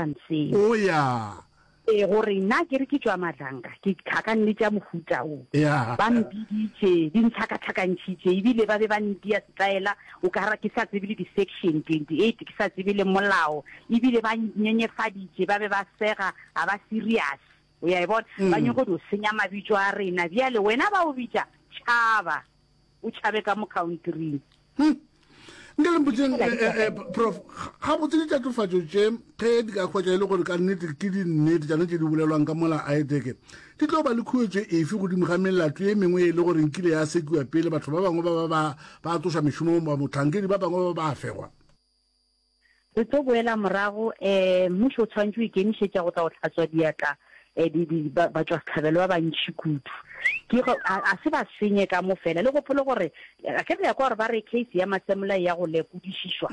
Manseng. O ya. Ee, gore nna ke re ke tšwa Madlanka, ke tlhakanne tša mohuta wo. Ya. Ba mpiditše, di ntlhakatlhakantšhitše, ebile ba be ba ntia setaela o ka ra ke sa tsebe le di-section 28, ke sa tsebe le molao, ebile ba nnyenyefaditše, ba be ba sega, ga ba serious. O ya e bona? Ba nyoko dio senya mabitšo a rena. Bjale wena ba o bitša tšhaba. o tšhabe ka mo countryng hmm. nke le mpotseng eh, eh, eh, prof ga botse ditatofatso tše ge di ka hwetša e le gore ka nnete ke dinnete tšane tše di bolelwang ka mola aeteke di tlo ba le khuetso efe godimo ga melato e mengwe e le gore nkile ya sekiwa pele batho ba bangwe ba ba ba tsoša mešomo ba motlhankedi ba bangwe ba ba fegwa Re tlo boela morago, eh, mmušo o tshwanetše o ikemišetša go tla go hlatswa diatla, eh, di, di, ba, batšwasehlabelo ba bantši kudu. Ke go, a, a se ba senye ka mo fela. Le gopole gore, a ke re le ya kwa gore ba re case ya Masemola e ya go lekodišišwa.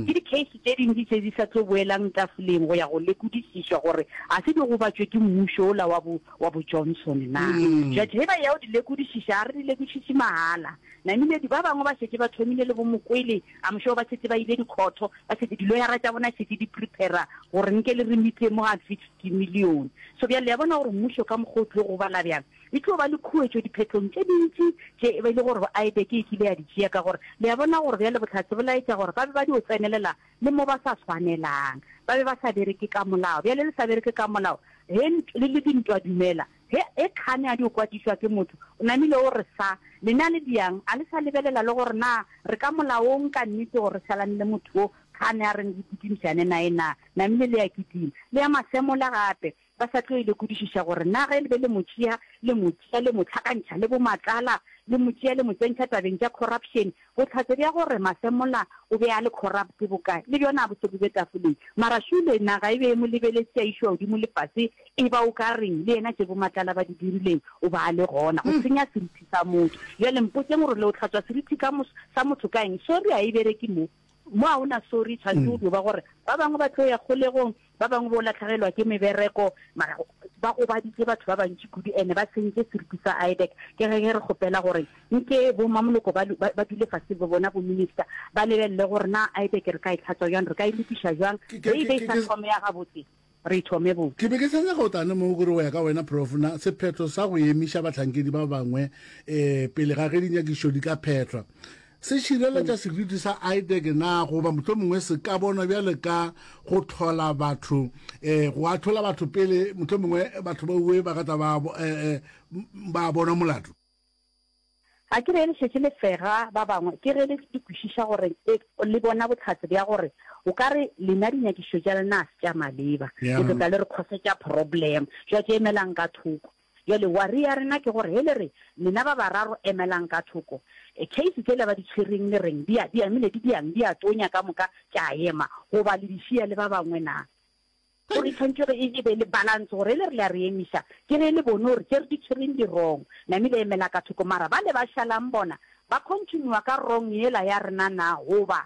Ke di-case tše dintši tše di sa tlo boelang tafoleng go ya go lekodišišwa gore a se di gobatšwe ke mmušo ola wa bo, wa bo Johnson na. Jwale ge ba ya go di lekodišiša, a re di lekodišiše mahala. Namile di, ba bangwe ba šetše ba thomile le bo Mokwele, I'm sure ba šetše ba ile dikhotho, ba šetše diloyara tša bona šetše di prepara gore nke le re meet-e mo at fifty million. So bjale le ya bona gore mmušo ka mokgwa o tlo go bala bjang, e tlo ba le khuetšo diphetlong tše dintši tše e be e le gore IBEC e kile ya di tšea ka gore le ya bona gore bjale bohlatse bo laetša gore ba be ba dio tsenelela le mo ba sa swanelang, ba be ba sa bereke ka molao. Bjale le sa bereke ka molao, he, le le dintwa dumela. Ge e kgane a dio kwatišwa ke motho, o namile o re sa. Lena le bjang, a le sa lebelela le gore na re ka molaong ka nnete gore re salanele motho wo kgane a reng re putimišane naye na? Namile le a kitima, le ya masemola gape, ba sa tlo e lekodišiša gore na ge le be le mo tšea, le mo tšea le mo hlakantšha le bo Matlala, le mo tšea le mo tsentšha tabeng tša corruption, Bohlatse bja gore Masemola o be a le corrupt bokae le bjona bo se bo be tafoleng. Mara šule naga e be e mo lebeletše a išwa godimo le fase e ba o ka reng le yena tše bo Matlala ba di dirileng o ba a le gona. Go senya serithi sa motho. Bjale mpotšeng gore le o hlatswa serithi ka mo sa motho ka eng? Sorry ha e bereke mo. Mo ga o na sorry tshwanetse o dio ba gore ba bangwe ba tlo ya kgolegong Ba bangwe bo latlhegelwa ke mebereko, mara ba gobaditše batho ba bantši kudu ene ba sentše seriti sa IDEC. Ke ge ge re kgopela gore nke bo mamoloko ba, ba, ba dule fase le bona bo minister, ba lebelele gore na IDEC re ka e tlhatswa bjang, re ka e lokiša bjang, Ke, ke, re e be ke, e sa ke, thome ya gabotse, re e thome botse. ke be ke sa nyaka go tla ne moo kore go ya ka wena Prof. Na sephetho sa go emiša bahlankedi ba bangwe eh, pele ga ge dinyakišo di ka phethwa Se šireletša seriti sa Aideke na goba mohlomongwe se ka bonwa bjale ka go tlhola batho eh, go ahlola batho pele mohlomongwe batho ba uwe ba ka tla ba bo- eh, eh, m- ba bona molato? Ga ke re le šetše le fega ba bangwe, ke ge le le kwešiša gore e, le bona bohlatse bja gore o ka re lena dinyakišo tša lena a se tša maleba. Yeah. Le tlo tla le re khosetša problem. Jwa ke emelang ka thoko. Bjale, wari ya rena ke gore, ge le re, Lena ba bararo emelang ka thoko, kheisi tšela ba di tšhwereng le reng, di a, di amile, di diang, di a tonya ka moka, tša ema, goba le di šiya le ba bangwe na? Gore e tshwanetše gore e, e be le balance, gore ge le re le a re emiša, ke ge le bone gore tše re di tšhwereng di wrong, namile emela ka thoko. Mara bale ba šalang bona, ba continua ka wrong yela ya rena na, goba?